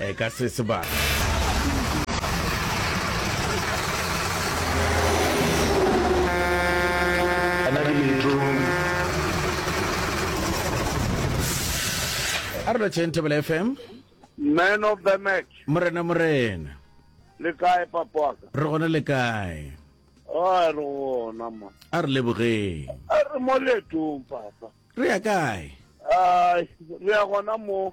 eh, ka se sebaka. a re lotšheng tebele fm man of the match morena morena le kae papaka re gone le kae a re gona ma a re lebogeng a re mo letong papa re ya kae a re ya gona mo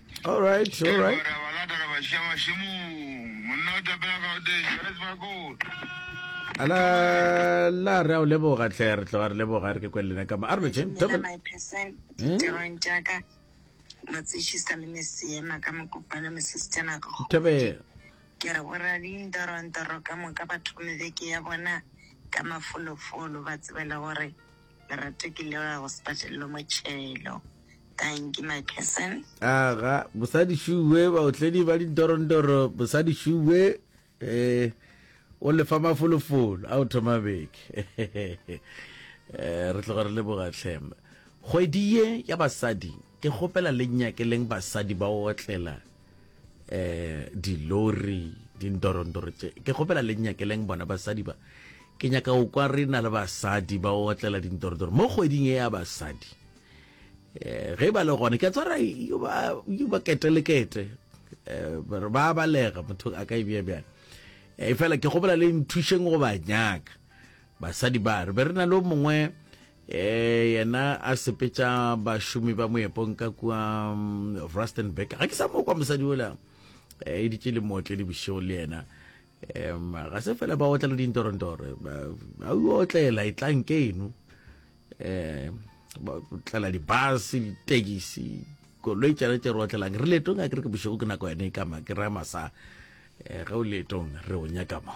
All right, all right. Ke gore balata re ba šia mašemong. Monna o tapela ka o teng, Johannes Bakone. Ala la re a o leboga tle re tlo re leboga re ke kwele lena ka ma. A re je. Tšela my percent Hmm? diterong tša ka matsetšhisa le meseema ka mokopana mesistena ka kgomo. Tebe ke re borra dintorantoro ka moka ba thome beke ya bona ka mafolofolo ba tsebele gore Lerato ke leboga go sepatelelo motšhelo thank you my person aga bosadi shuwe baotledi ba dintorondoro bosadi shuwe eh o lefa mafolofolo a o thoma beke eh, re tloga re leboga tlhem kgwedi ye ya basadi ke kgopela le nyakeleng basadi ba otlela eh dilori dindorondoro tše ke kgopela le nyakeleng bona basadi ba ke nyaka go kwa re na le basadi ba otlela dindorondoro mo kgweding e ya basadi um ge ba le gone ke tsara yo ba kete le kete um ba balega motho a ka ebja bjang um fela ke kgopela le nthušeng go ba nyaka basadi ba re be re na le mongwe Ee, yena a sepetša bašomi ba moepong ka kua mm, Rustenburg. Ga ke sa mo kwa mosadi ola eh, e ditše le mootledi bošego le yena um ga se fela ba otla le dintorontoro a o otlela e tlang ke eno um ba otlela dibus ditekisi koloi tšana tše re otlelang re letong a ke re ke bošego ke nako yone e kama ke raya masa um ge o letong re o nyaka mo